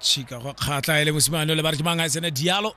tšhika go kgatlha e le mosimane o le ba re ke mang a tsena dialo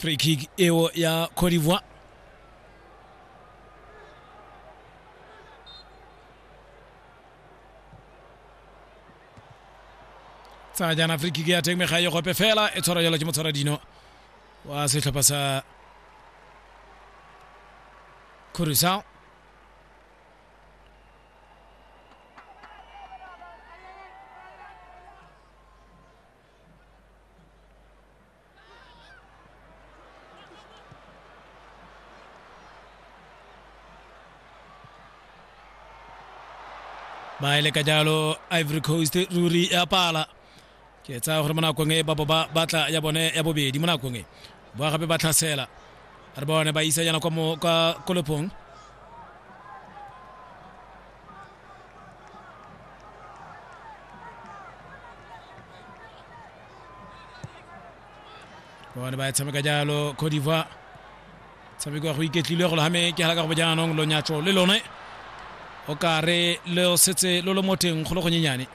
free kick eo ya Cote d'Ivoire tsaya jaana free kick ya teng mega ye gope fela e tshwara jalo ke motshwara dino wa setlhopha sa Curacao ba ele ka jalo ivory coast ruri ya pala ke tsaya gore mo nakong e babo ba batla ya bone ya bobedi mo nakong e ba gape ba tlhasela re bone ba isa yana kwa mo ka kolepong bone ba e tshameka jalo cote d'ivoire tshameko ya go iketlilwe go logame ke halaka go bojaanong lonyatso le lone o ka re le setse lo lo mo teng go le gonyenyane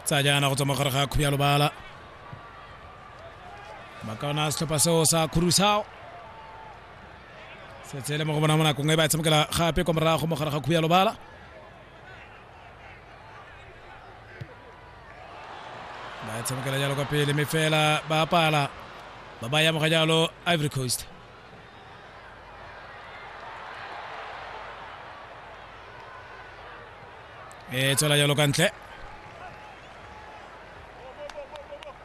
tsa jaana go tswa mogare ga kgobjalobala ba ka ona setlhopha seo sa khurusao setse e le mo go bona mo nakong e ba e tshamekela gape kwa morago mo gare ga khuya lobala ba e tshamekela jalo kwa pele mme fela ba pala ba ba yamoga jalo ivory coast e tswela jalo ka ntle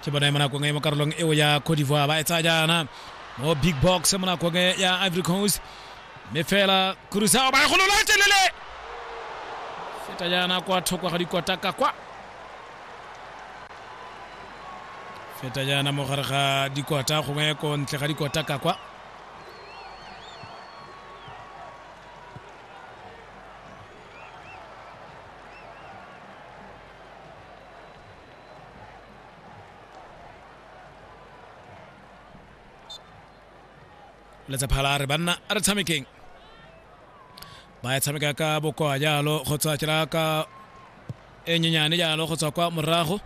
ke bone mo nakong e mo karolong eo ya cote d'ivoire ba e tsaya jaana mo big box mo nakong e ya ivory coast mme fela kurusao ba e golola e telele feta jaana kwa thoko ga dikotaka kwa feta jaana mo gare ga dikota gongwe ko ntle ga dikotaka kwa letsapha la re banna a re tshamekeng ba ya tshameka ka bokoa jalo go tswa tsela ka e nyenyane jalo go tswa kwa morago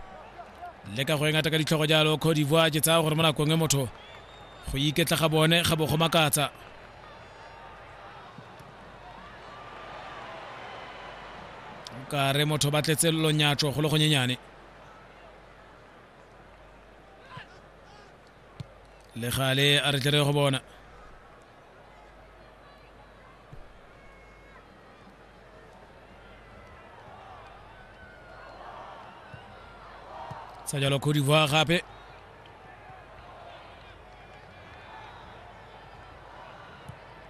le ka go e ngata ka ditlhogo jalo cote divoire ke tsaya gore mo nakong e motho go iketla ga bone ga bo go makatsa ka re motho ba tletse lonyatso go le gonyenyane le gale a re tlere go bona sa jalo Cote d'Ivoire gape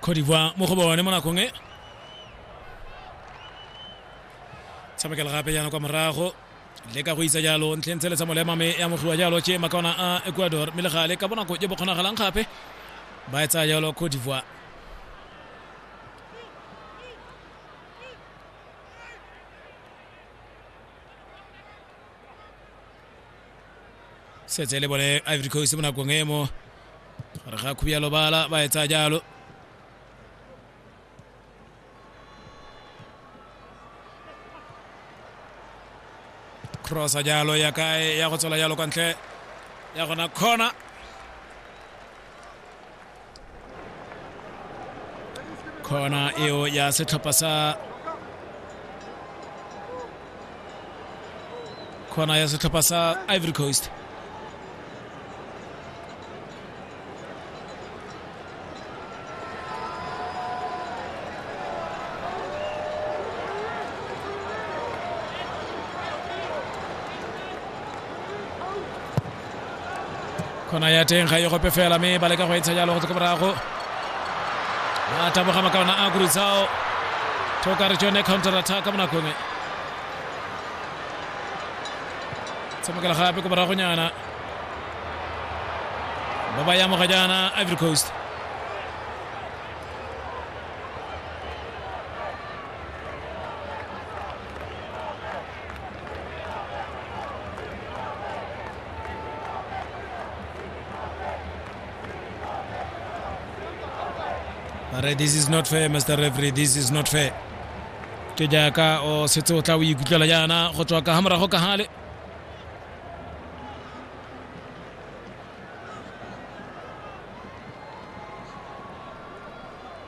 cote d'ivoire mo go bone mo nakong e tshamekela gape jaana kwa morago le ka go isa jalo ntlheng tshele tsa molema me e amogiwa jalo tše makaona a ecuador mme le gale ka bonako je bo kgonagalang gape ba e tsaya jalo cote d'ivoire setse e le bone ivory coast mo nakong e mo re ga khubia lobala ba etsa jalo crossa jalo ya kae ya go tswela jalo kwa ntle ya gona corner kona eo ya setlhopha sa kona ya setlhopha sa ivory coast khona ya teng ga e gope fela mme ba leka go e tsha jalo go tse ko morago a taboga makaona a kuritsao thoka re tsone counter attack ka bonakong e tshamekela gape ko moragonyana ba ba yamoga jaana ivory coast Re, this is not fair mr referee this is not fair ke jaaka o setse o tla o ikutlwela jaana go tswa ka ga morago ka gale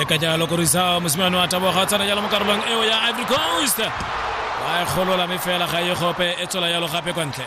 le ka jalo korisa mosimane wa taboga o tsena jalo mo karolong eo ya ivory coast ba e golola mme fela ga e gope e tswela jalo gape kwa ntle